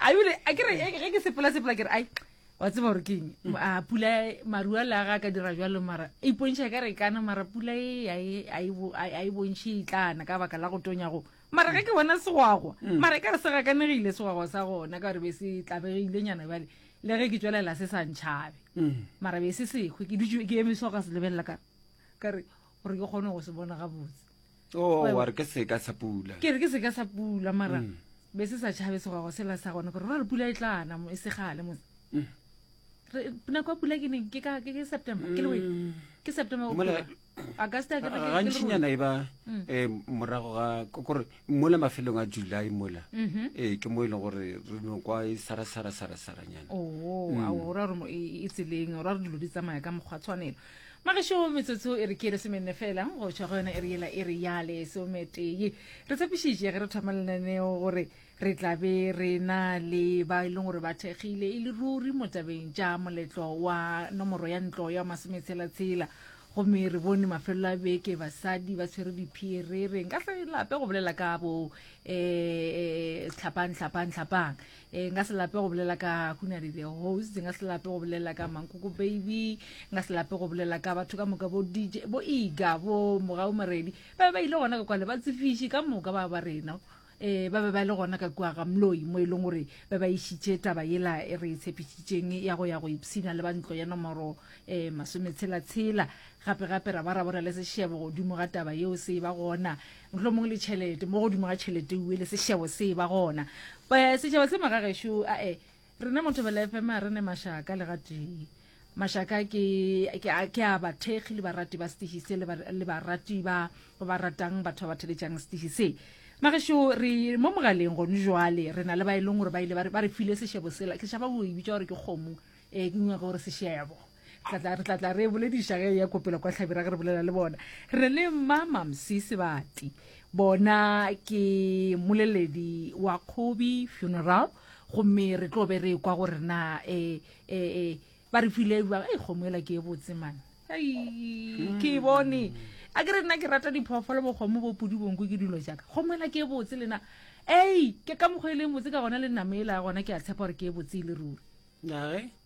a yule a kere ge ke sepela sepela kere ai wa tseba gore keng a pula marua le aga ka dira jalo mara e ipontšha ka re kana mara pula e a e bontšhe e tlana ka baka la go tonyago mara ge ke bona segwagwa mm. mara e ka re se gakanegile segwagwa sa gona ka gore be se tlabegile nyana bale le ge ke tswelela se sa ntšhabe mm. mara be se sekgwe ke dutse ke emiswa ka se lebelela ka kare gore ke kgone go se bona gabotse oh, wa re ke seka sa pula ke re ke seka sa pula mara mm. be se sa tšhabe segwago sela sa gone gore ra re pula e tlana e segale mo mm. nako ya pula ke neng ke ka ke september ke lewe mm. ke september go pula augusta ke ke gantšinyana e ba eh morago ga gore mola mafelong a july mola mm-hmm. eh ke mo ile e gore re no kwa e sara sara sara sara nyana oh a o ra re e, e tseleng ra re dilo di tsamaya ka mokgwa tshwanelo magešo metsotso e re ke lesomenne fela go tšwa go yona e re yela e re ya lesometee re tshepišitše ge re thoma lenaneo gore re tla be re na le ba e leng gore ba thekgile e le ruri mo tabeng tša moletlo wa nomoro ya ntlo ya masometshela-tshela gomme re bone mafelelo a beke basadi ba tshwere diphie re reng ka tlelape go bolela ka bo um tlhapang tlhapang tlhapang e nka se lape go bolela ka hunari the host nka se lape go bolela ka mankoko baby nka se lape go bolela ka batho ka moka bo dj bo iga bo mogau moredi ba be ba ile gona ka kwale ba tsefiši ka moka ba ba rena um ba be ba le gona ka kua ga moloi mo e leng gore ba ba išitše taba yela e re e tshepišitšeng ya go ya go ipshina le ba ntlo ya nomoro um masometshela-tshela gape-gape ra ba ra bona le sešebo godimo ga taba yeo se e ba gona mohlomong le tšhelete mo godimo ga tšhelete ue le sešebo se ba gona Eh, sešebo se magagešo ae rena mo thobela fm a re ne mašaka le gatee mašaka ke ke a- ke a bathekgi le barati ba setiši se le ba- le barati ba ba ba ratang batho ba ba theletšang setiši se magešo re mo mogaleng gone jwale re na le ba e leng gore ba ile ba re- ba re file sešebo sela ke šaba go e bitša gore ke kgomo um ke nyaka gore sešebo re tla re tla tla re bolediša ge ya kopelo kwa tlhabira ge re bolela le bona re le mmamamsi sebati bona ke moleledi wa kgobi funeral gomme re tlo be re kwa gore na um um ba re file ba e kgomo ela ke e botse mane ke e bone a ke re nna ke rata diphoofolo bokgomo bo pudi bonko ke dilo jaaka kgomo ela ke e botse lena ei ke ka mokgwa e leng botse ka gona le namela gona ke a tshepa gore ke e botse e le ruri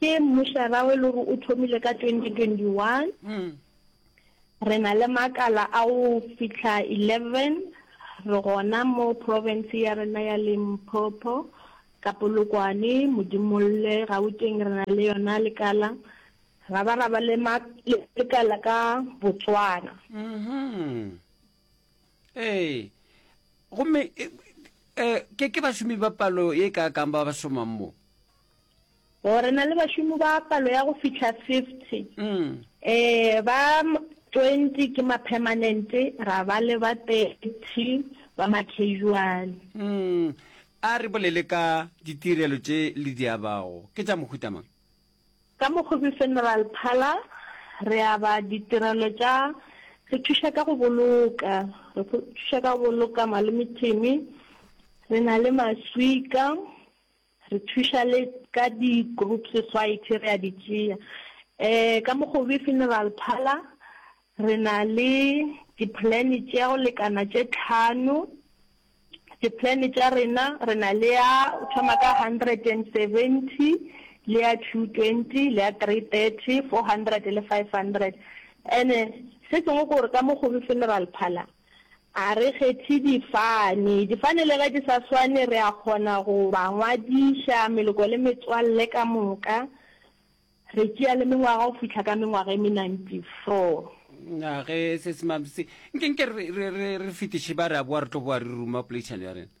Ke mmušara o e le gore o thomile ka 2021. Re na le makala a go fitlha 11 re gona mo profense ya rena ya Limpopo, ka Polokwane, Modimolle, Gauteng re na le yona lekala, ra ba ra ba le lekala ka Botswana. Ee, gomme ke bašomi ba palo ye kaakang ba ba šomang mo? Oh, re na le bašomi ba palo ya go fitlha fifty. Mm. Eh, ba twenty ke ma-permanente, ra ba le ba thirty ba ma-casual. Mm. A re bolele ka ditirelo tše le di abago. Ke tša mohuta mang? Ka Mokgobe Funeral Parlour, re aba ditirelo tša, re thuša ka go boloka, re pho- thuša ka go boloka malome Timmy, re na le maswika, Re thuša le ka di group society re a di tšea um ka Mokgobe Funeral Parlour re na le di plan tša go lekana tše tlhano. Di plan tša rena re na le ya o thoma ka hundred and seventy le ya two twenty le ya three thirty, four hundred le five hundred. And-e se sengwe ke gore ka Mokgobe Funeral Parlour A re kgethe difane. Difane le ge di sa swane, re a kgona go ba ngwadiša, meloko le metswalle ka moka. Re tšea le mengwaga go fihla ka mengwaga e me 94. Na ge se se mabse, nke nke re fetiše ba re a boa re tlo boa re ruma poleišano ya rena?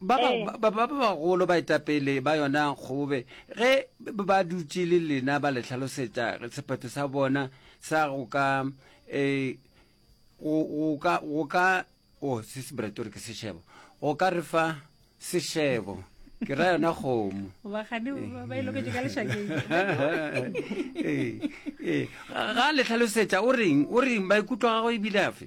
ba Ee. ba- ba- ba bagolo baetapele ba yona kgobe ge ba dutše le lena ba le tlhalosetša sephetho sa bona sa go ka um go go ka go ka o se se brate gore ke sešebo go ka re fa sešebo ke ra yona kgomo bagane ba ba e loketše ka lešakeng Ee, ee. ga le hlalosetša o reng o reng maikutlo a gagwe ebile afe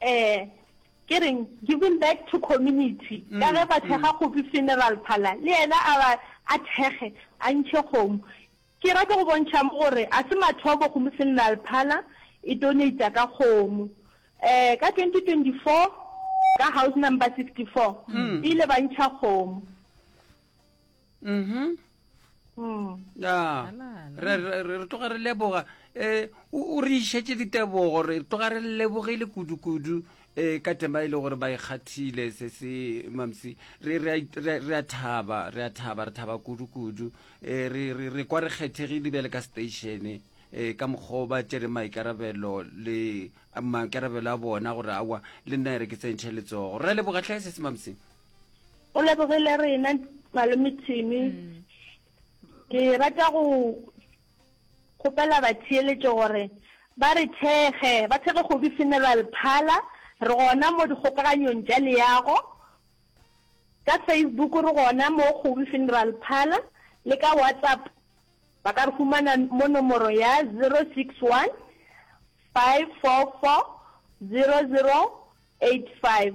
Eh, ke reng, giving back to community. Mm, Ka ge ba thekga mm. kgopi funeral parlor, le yena a ba a thekge, a ntšhe kgomo. Ke rata go bontšha mo gore a se mathomo kgomo funeral parlor e donata ka kgomo. Eh, ka 2024 ka house number 64 mm. ile ba ntšha kgomo. mhm mm. ya re re tloga re leboga eh o re išetse ditebogo re tloga re lebogile kudu kudu eh ka tema ile e gore ba ikgathile e se se mamsi re re re a thaba re a thaba re thaba kudu kudu eh re re re kwa re kgethegile bjale ka station e eh, ka mokgwa ba tsere maikarabelo le maikarabelo a bona gore awa le nna ere ke tsentšhe letsogo re leboga tlhae se se mamseng O lebogile rena malome Thimi. Mm. Ke rata go kgopela batheeletšo gore ba re thekge ba thekge kgobi funeral phala re gona mo dikgokaganyong tša leago ka facebook re gona mo kgobi funeral phala le ka whatsapp ba ka re humana mo nomoro ya 061 544 0085